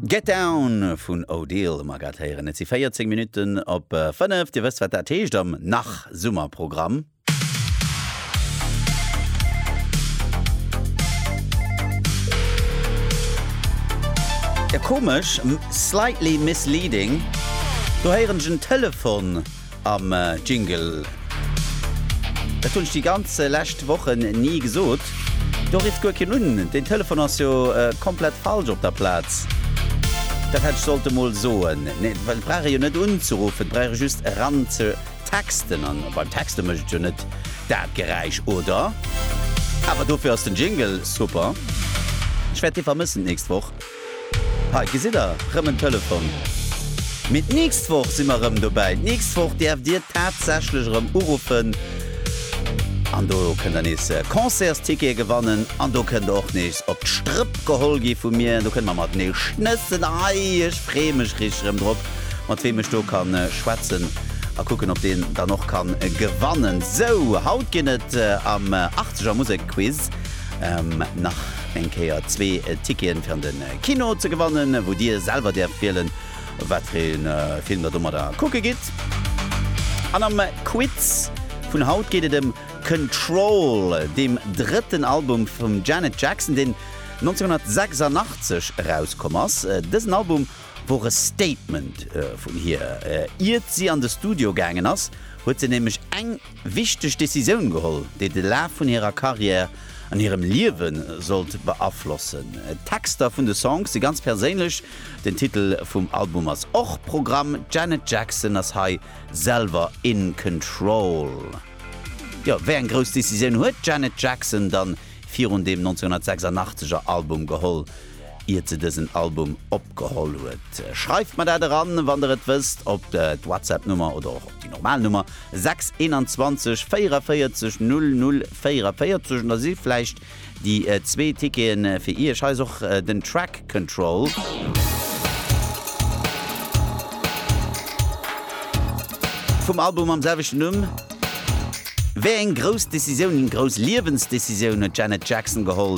Get Down vun Odile mer grad héieren. Et si 14 Minutten op 5. Dir wësst, wat dat heescht am Nach-Summer-Programm. Komesch, slightly misleading, do héieren ech en Telefon. am Jingle. Dat hunn ech déi ganz lescht Wochen ni gesot. Do rifft guer keen un. Deen Telefon ass jo komplett falsch op der Plaz. Dat hätt ech sollte mol soen. Nee, well et brauch ee jo net unzeruffen, et brauch ee just eran ze texten. An beim Texte mécht et jo net dat Geräisch, oder? Awer dofir ass den Jingle super. Ech wäert dee vermëssen d'nächst Woch. Hei gesitt der rëm en Telefon. Mee d'nächst Woch si mer rëm dobäi. D'nächst Woch däerft dir tatsächlech erëm uruffen an do kënnt der nees Concertstickete gewannen an do kënnt der och nees op d'Strëpp geholl gi vu mir an do kënnt mer mat nees schnëssen. Hei, ech freeë mech richteg erëm drop, mat weem ech do ka schwätzen a kucken, ob deen dann och ka gewannen. Sou, haut ginn et am 80er Musek Quiz nach. Eng Kéier zwee Ticketen fir an de Kino ze gewannen, wou dir selwer däerft wielen, wat fir ee Film der domadder kucke gitt. An am Quiz vun haut geet et ëm Control, deem drëtten Album vum Janet Jackson, deen 1986 erauskomm ass. Dësen Album wor e Statement vun hir. Iert si an de Studio gaangen ass, huet se nämlech eng wichteg Decisioun geholl, déi de Laf vun hirer Karriär an hirem Liewe sollt beaflossen. D'Texter vun de Songs si ganz perséinlech, den Titel vum Album ass och Programm, d'Janet Jackson ass hei selwer in control. Jo, wéi eng grouss Decisioun huet d'Janet Jackson dann virun deem 1986 er Album geholl? iert se dësen Album opgeholl huet? Schreift mer dat eran, wann der et wësst, op d'Whatsapp-Nummer oder och op déi normal Nummer 6 21 44 00 44 an da si vläicht déi zwee Ticketen fir Iech. Hei ass och den Track Control. Vum Album mam selwechten Numm. Wéi eng grouss Decisioun, eng grouss Liewensdecisioun huet d'Janet Jackson geholl,